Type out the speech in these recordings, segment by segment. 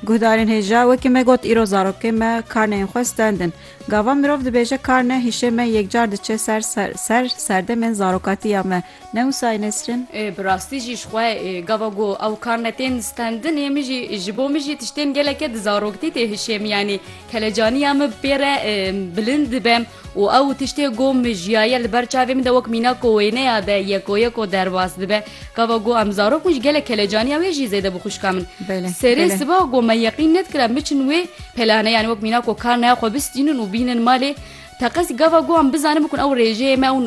Guhdarên hêja wekî me got îro zarokê me karneyên xwe stendin. Gava mirov dibêje karne hişê me yekcar diçe ser ser serdemên zarokatiya me. Ne wisayê Nesrin? Ê bi rastî jî ji xwe gava ku ew karne tên stendin ê min jî ji bo min jî tiştên geleke di zaroktî tê hişê min yanî kelecaniya min pê re bilind dibe. Û ew tiştê ku min jiyaye li ber çavê min de wek mîna ku wêneya de yeko yeko derbas dibe. Gava ku em zarok bûn ji gelek kelecaniya wê jî zêde bû xwişka min. Serê siba ku me yeqîn nedikir em biçin wê pelane yanî wek mîna ku kar naya xwe bistînin û bînin malê. Teqez gava ku em bizanin bikun ew rêjeyê me û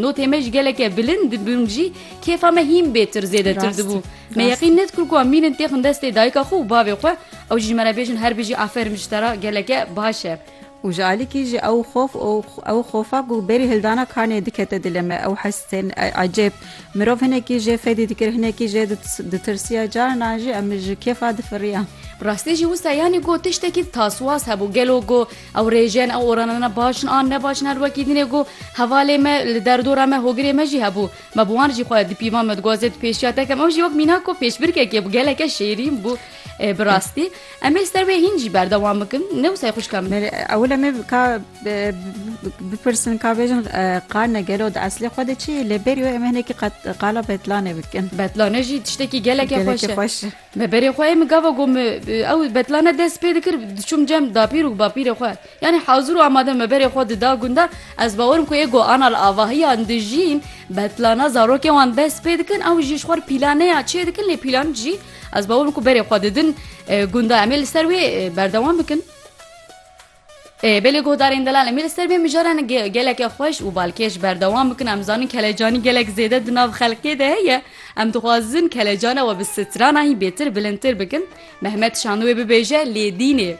notê me ji geleke bilind dibûn jî kêfa me hîn bêtir zêdetir dibû. Me yeqîn nedikir ku em mînin têxin destê dayika xwe û bavê xwe. Ew jî ji me re bêjin her bijî aferin ji te re geleke baş e. Û ji alikî jî ew xof û ew xofa ku berî hildana kanê dikete dilê me, ew hestên ecêb. Mirov hinekî jê fedî dikir, hinekî jê ditirsiya, carinan jî em ji kêfa difiriyan. Bi rastî jî wisa yanî got tiştekî taswaz hebû, gelo got ew rêjen, ew oranana baş in an ne baş in her wekî din e got hevalê me li derdora me hogirê me jî hebû. Me bi wan jî xwe di pîvan me dixwazê dipêşiya te kem. Ew jî wek mînak got pêşbirkekê bû, geleke şêrîn bû bi rastî. Em ê li ser wê hîn jî berdewam bikin ne wisa xwişka min. Ewil em ê ka bipirsin ka bêjin qarne gelo di eslê xwe de çi yê lê berî wê em ê hinekî qala betlanê bikin. Betlane jî tiştekî gelekê xweş e. Me berê xwe ê min gava got min ew betlane dest pê dikir diçûm cem dapîr û bapîrê xwe yanî hazir û amade me berê xwe dida gundan ez bawerim ku ê goana li avahiyan dijîn betlana zarokên wan dest pê dikin ew jî ji xwe re pîlaneya çê dikin lê pîlan jî Ez bawer bikim berê xwe didin gunda em ê li ser wê berdewam bikin. Belê guhdarên delal em ê li ser bê mijaran geleke xweş û balkêş berdewam bikin em zanin kelecanî gelek zêde di nav xelkê de heye em dixwazin kelecana we bi strana hî bêtir bilindtir bikin Mehmet şanû wê bibêje lê dînê.